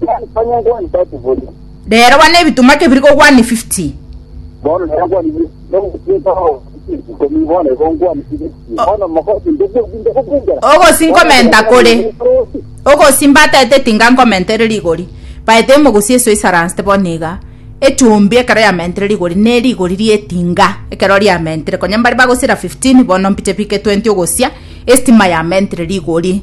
One point one one thirty bori. Rero bane ebitumwa kebiri ko one fifty. Bono nero kwani bi. Bono kutinka ho. Komi bono ego kwani bi. Bono mokosi ndege binde kubindera. Ogosi nkomenta kore. Ogosi mbatete tinga nkomentere rigori. Baete emogosi eso isaranste bono iga. Echumbi ekero yamentere rigori ne rigori rietinga ekero riamentere. Konya mbari bagosira 15 bono mpiche bike 20 ogosia. Estima yamentere rigori.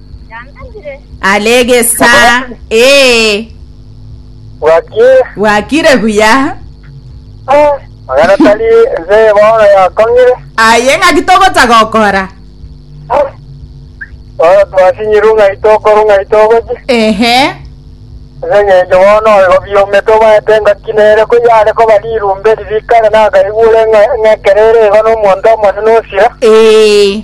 Are egesaa. Ee. Bwakie. Bwakire buya. Ah, magana tari ense bono yakong'ire. Aye ng'aki togocha gokora. Ah. Bono twasinyiru ng'ai tokoru ng'ai togochi. Ehe. Ase eng'encho bono oigo biomete obaete engaki nere ko yare koba rirumbe ririkare nakaigure ng'a- ng'ekerere igo nomonto omonene osira. Ee.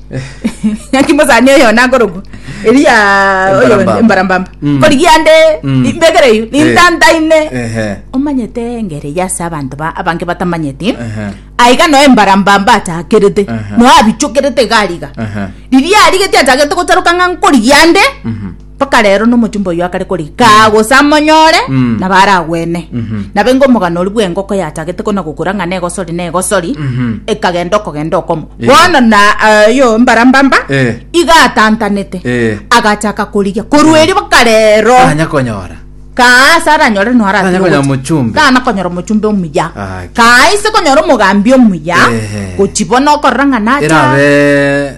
naki mosani oyo nagorogwa eria oyo Embarambamba. embarambamba Mm. korigia ande Mm. imbegere eyo nintantaine Ehe. omanyete engere eya ase abanto ba- abange batamanyeti Ehe. aiga noe embarambamba achakerete Aha. noe abichokerete gariga Aha. riria arigeti achagete gocharoka ng'a nkorigia ande Mhm. Mpaka rero nomochumba oyio akare korigia kaa gose amonyore Mm. nabo aragwene Mhm. nabo engo omogano oria bw'engoko yachagete kona gokura ng'a negosori negosori Mhm. ekagenda okogenda okomo Eh. bono na eh, yo mbarambamba Eh. igatantanete Eh. agachaka korigia korwa erio mpaka rero Tanya konyora. kaa ase aranyore no Tanya konyora aratiga mochumbe. kana konyora omochumbe omuya Ah, ki- kaa ise konyora omogambi omuya Ehe. gochi bono okorora ng'a nacha Erabe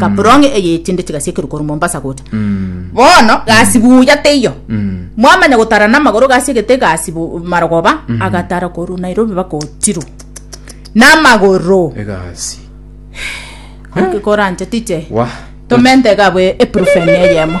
kaprong eye echinde chigasi ekerukoro mombasa gocha bono gasi buya teiyo mwamanya gotara namagoro gasi egete gasi bu- marogoba agatara koru nairobi baka ochiru namagoro egasi koranche tiche Wah. tomente gabwe eprufeni eyemo